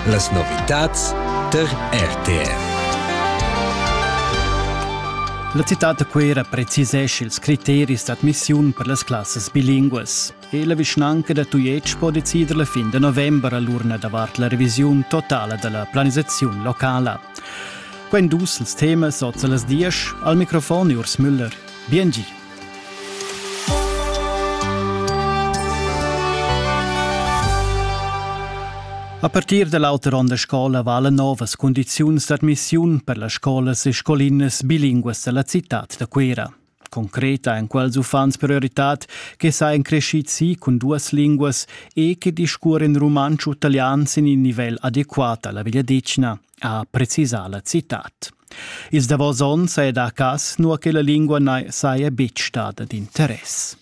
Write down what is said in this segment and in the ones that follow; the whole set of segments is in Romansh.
Las novitads tar RTR. La citad da Cuera precisescha ils criteris d'admissiun per las classas bilinguas. E la vischnanca da Tujetsch po decider la fin de novembre l'urna davart la revisiun totala della planisazione locala. Quen dus ils temas oz las dies al microfon Urs Müller. Bien gi. A partir da l'auter onn da scola valan novas cundiziuns d'admissiun per las scolas e scolinas bilinguas da la citad da Cuira. Concreta èn quels uffants prioritad che sajan crescids si cun duas linguas e che discurren rumantsch u talian sin in nivel adequat a la vegliadetgna, ha precisà la citad. Ils davos onns è da cas nua che la lingua na saja betg stada d'interess.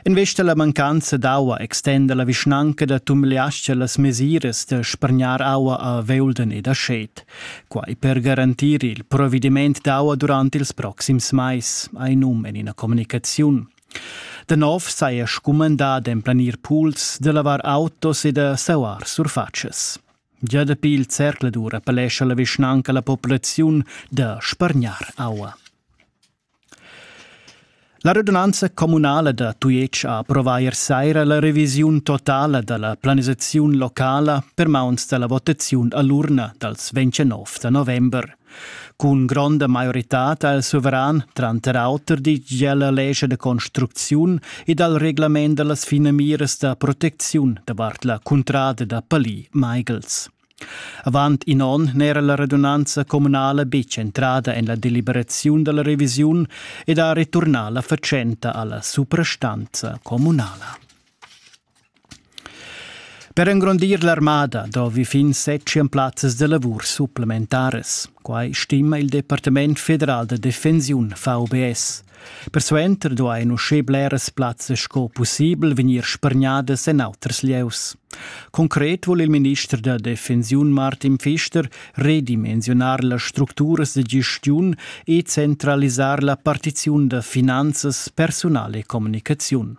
Investa la mancanza d'aua extenda la vischnanca da Tumliascha las mesiras da spargnar aua a Veulden ed a Schet. Quai per garantir il provediment d'aua durant ils proxims mais, ha num en ina communicaziun. Da nov saja scumandà d'emplanir pools, da lavar autos e da sauar surfatschas. Gia dapi il zercladur appellescha la vischnanca la populaziun da spargnar aua. La radunanza communala da Tujetsch ha approvà ier saira la revisiun totala da la planisaziun locala per mauns da la votaziun a l'urna dals 29 da november. Cun gronda maioritad al suveran, tranter auter digl lescha de construcziun e dal reglament da las finamiras da protecziun davart la cuntrada da Palì-Michaels. Avant in onn n'era la radunanza communala betg entrada en la deliberaziun da la revisiun ed ha returnà la fatschenta alla suprastanza communala. Per engrondir l'armada dovi fin set plazzas da lavur supplementaras. Quai stima il Departament federal da defensiun VBS. Persuenter duain uschè bleras plazzas sco pussibel vegnir spargnadas en auters lieus. Concret vul il minister da defensiun Martin Fister redimensionar las structuras de gestiun e centralisar la partiziun da finanzas, personal e communicaziun.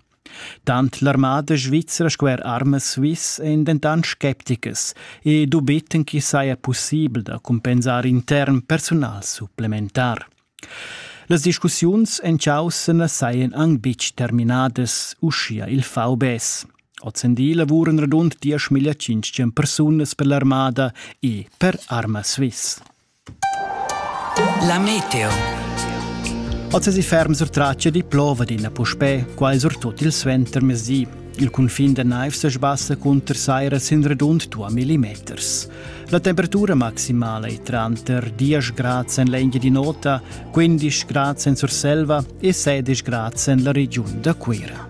Tant l'armada svizra sco er armas Swiss èn dentant scepticas e dubittan ch'i saja pussibel da cumpensar intern persunal supplementar. Las discussiuns en chaussa na sajan anc betg terminadas, uschia il VBS. Ozendi lavuran radund 10.500 persunas per l'armada e per Arma Swiss. La meteo. Oz si ferm sur traccia di plova d'ina puspè, quai surtut il suenter mesi. Il cunfin da naiv se sbassa cunter saira sin redund 2 millimeters. La temperatura maximala è tranter 10 grad en l'Engia di Nota, 15 grad en Surselva e 16 grad en la regiun da Cuira.